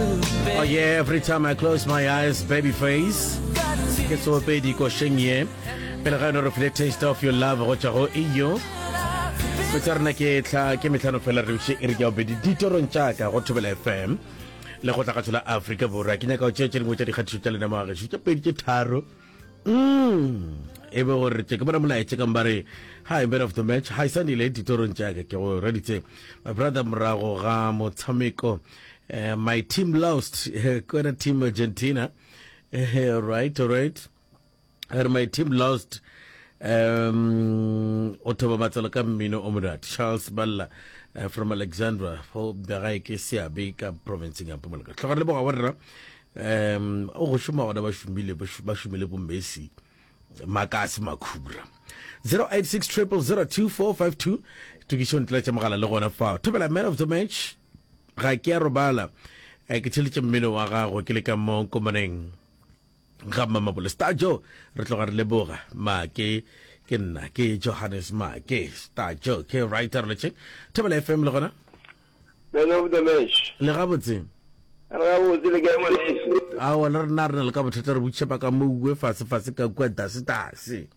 Oh yeah, every time I close my eyes, baby face. Ke tsopedi kosheng ye. Pele ga yone re file taste of your love go tšwa go iyo. Metsa rena ke tla ke metlhano fela re bše e re ke ya bedi ditorong tša ka go thobela FM le go tla ka tshola Afrika Borwa. Ke nyaka go tšea tše dingwe tša dikgatišo tša lena moaga tše pedi tše tharo. Mm. e be gore tse ke bona molaetse kang ba re hi man of the match hi sanile ditorong tša ka ke go reditse my brother morago ga motshameko uh, my team lost uh, kwena team argentina uh, right right and my team lost um o thoba matsalo ka mmino o monate charles balla uh, from alexandra fo bjagae ke seabe ka provinceng ya mpumalaka tlhoga le boga wa rena um o go šoma gona ba šomile ba šomile bo messi makase makhura 086 0002452 tokišo ntlela tša mogala le gona fa thobela man of the match Ga ke a robala, ke theletše mmino wa gago ke le ka mo komaneng ga mmamabole. Star Joe, re tloga re leboga. Maake, ke nna ke Johannes Maake. Star Joe, ke right aroletseng. Thobela FM le gona? Man of the match. Le gabotse. Re gabotse le kae ngwaneso? Aowa le rena re na le ka bothata re butšhepa ka mo uwe fase fase ka kua dase dase.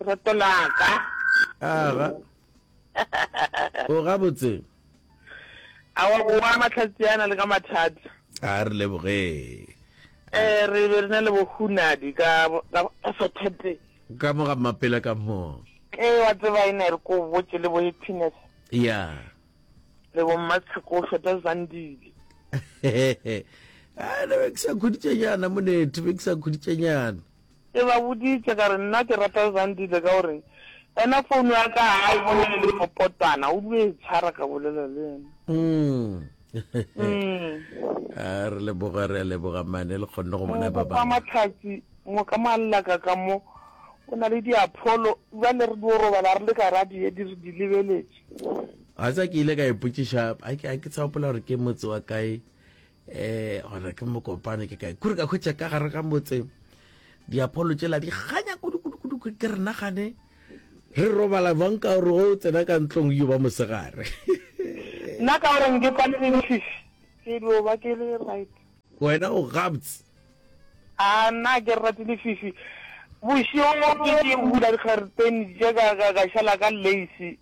Lerato la ka. Aga. O gabotse. A wa boa mahlatsi ana le ka mathata. A re leboge. Eh re be re na le bohunadi ka ka Saturday. Ka mo ga mapela ka mo. Eh wa tseba ene re ko botse le bo happiness. Yeah. Le bo mmatsheko o feta zandile. Ah, ne be ke sa khuditšenyana monethe be ke sa khuditšenyana Ke ba boditše ka re nna ke rata Zandile ka gore ena phone ya ka ga e bone le dipopotwana, o dule e tshwara ka bolela le yena. Umm. A re leboga re a leboga mane le kgonne go bona ba bangwe. Mongwe kwa Matlhatsi, mongwe ka Mallaka ka mo o na le diapholo, bjale re dio robala re le ka ra di di re di lebeletše. Wa tseba ke ile ka ipotšiša, a ke a ke sa gopola gore ke motse wa kae, eh gore ke mokopane ke kae kure ka khwetša ka gare ga motse diapholo tšela di ganya kudukudukudu ke re nagane re robala bang ka gore o tsena ka ntlong yo ba mosegare nna ka gore nke kwane le dififi ke dio ba ke le right wena o gabts a nna ke rate dififi bošego ke ke bula dikgareteni je ka šala ka lace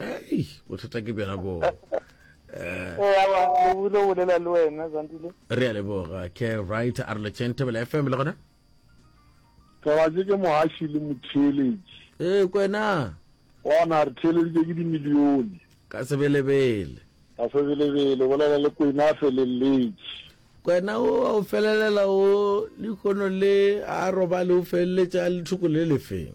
ei bothata ke bjona boo eh. eh, awa lobule o bolela le wena zandile re a leboga ke right a re letšeng tebela fm le gona tlabatse ke mohaši le motheeletši ee eh, kwena ona re theeleditše ke dimilione ka sebelebele ka sebelebele bolela le kwena a feleletše kwena o a o felelela o lekono le a robale o feleletše a lethoko le lefeng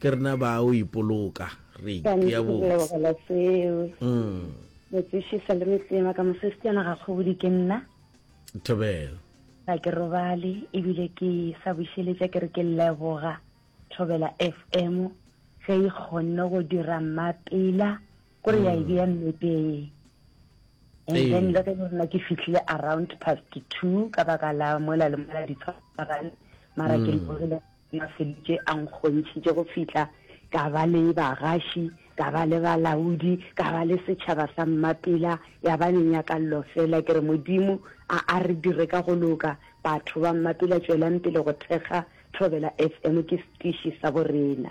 ke rena ba o ipoloka re itea botselebogela seo metsešisa le metsema ka mosestiana ga kgobodi ke nna thobelo ga ke robale ebile ke sa bušeletša ke re ke leboga thobela f m ge e kgonne go dira mmapela kore ya e bea mmepeng and then le ge rena ke fitlhile around past two ka baka la mola le mola ditshwarane mara ke leborile Na Felice a nkgontšhitše go fihla ka ba le bagaši, ka ba le balaodi, ka ba le setšhaba sa mmapela, ya ba menyakallo feela. Ke re, Modimo a a re dire ka go loka, batho ba mmapela, tšwelang pele go thekga Thobela FM, ke setiši sa borena.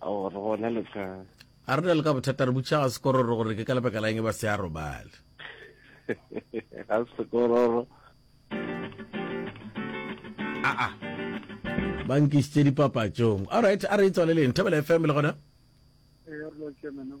Ao, re gona le ka. A re na le ka bothata, re butša ga sekororo gore ke ka lebaka la eng e ba se a robale. Ga sekororo. Aa, ba nkišitše dipapatšong. All right, a re e tswaleleng. Thobela FM le gona? Ee, re lo tšea mena o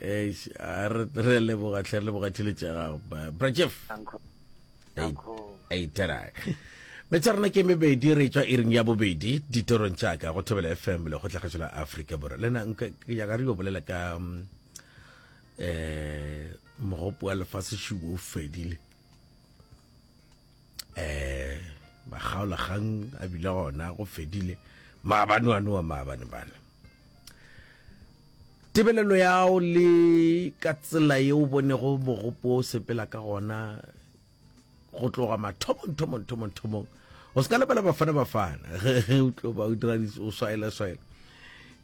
eish a re re leboga tlhe re leboga tšhelete ya gago Ba- bra jeff Uncle. Ei, Uncle. ei, tera. betsa rena ke mebedi re tswa iring ya bobedi ditorong tšaka go thobela fm le go tlhagetšo la afrika borwa lena nka ke nyaka re yo bolela ka um mogopo wa lefase šubo o fedile eh makgaola kgang a bile gona go fedile maabane wa noa maabane bana tebelelo yago le ka tsela ye o bonego mogopo o sepela ka gona go tloga mathomong thomong thomong thomong o se ka lebela bafana bafana ge o tlo ba o dira o swaela swaela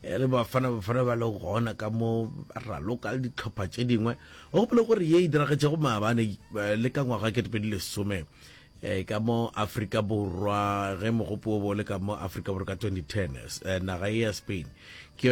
E le Bafana Bafana ba le gona ka mo ba raloka le ditlhopha tše dingwe. O gopole gore ye e diragetšego maabane eh, le ka ngwaga kete pedi lesome eh, ka mo Afrika Borwa ge mogopo o bo le ka mo Afrika Borwa ka 2010 eh, naga ye ya Spain ke